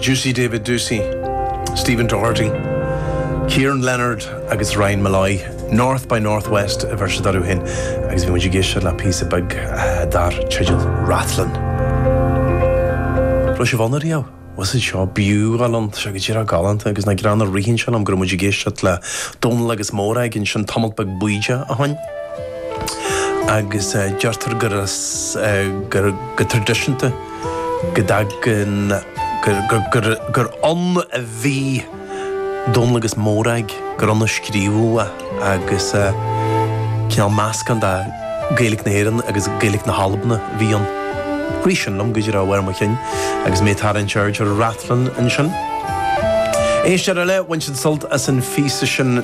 Doocey, David Doocey, Stephen Doherty, Kieran Leonard agus Ryan Molloy, North by Northwest a bheir siad orthu féin agus bhí muid ag éisteacht le píosa beag dar teideal Rathlin. Raibh sibh ann ariamh? Bhfuil a fhios agat seo, b'fhiú dhul ann, tá sé go díreach galánta agus nach greannmhar ritheann sé liom go raibh muid ag éisteacht le Dónal agus Mórag ansin tamalt beag bídeach ó shin. agus deirtear gur go traidisiúnta go dtagann gur ann a bhí Dónall agus Mórag, gur ann a scríobhadh agus cineál meascán de Ghaeilge na hÉireann agus Gaeilge na hAlban a bhí ann. Rith sin liom go díreach ar chúl mo chinn agus mé ag tarraingt aird ar Rathlin ansin. Éisteoir eile ag baint an-sult as an phíosa sin.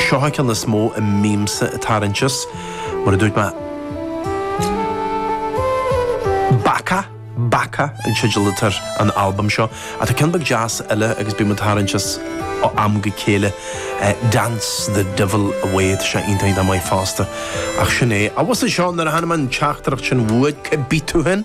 Seo é an ceann is mó a mbímse ag tarraingt as, mar a dúirt mé, Baka, Baka an teideal atá ar an albam seo, ach tá ceann beag deas eile agus bím ag tarraingt as ó am go chéile, Dance the Devil Away, tá sé iontach maith fosta. Ach sin é. An bhfuil a fhios agat seo nuair a chonaic mé an teachtaireacht sin uait, cá bith tú féin?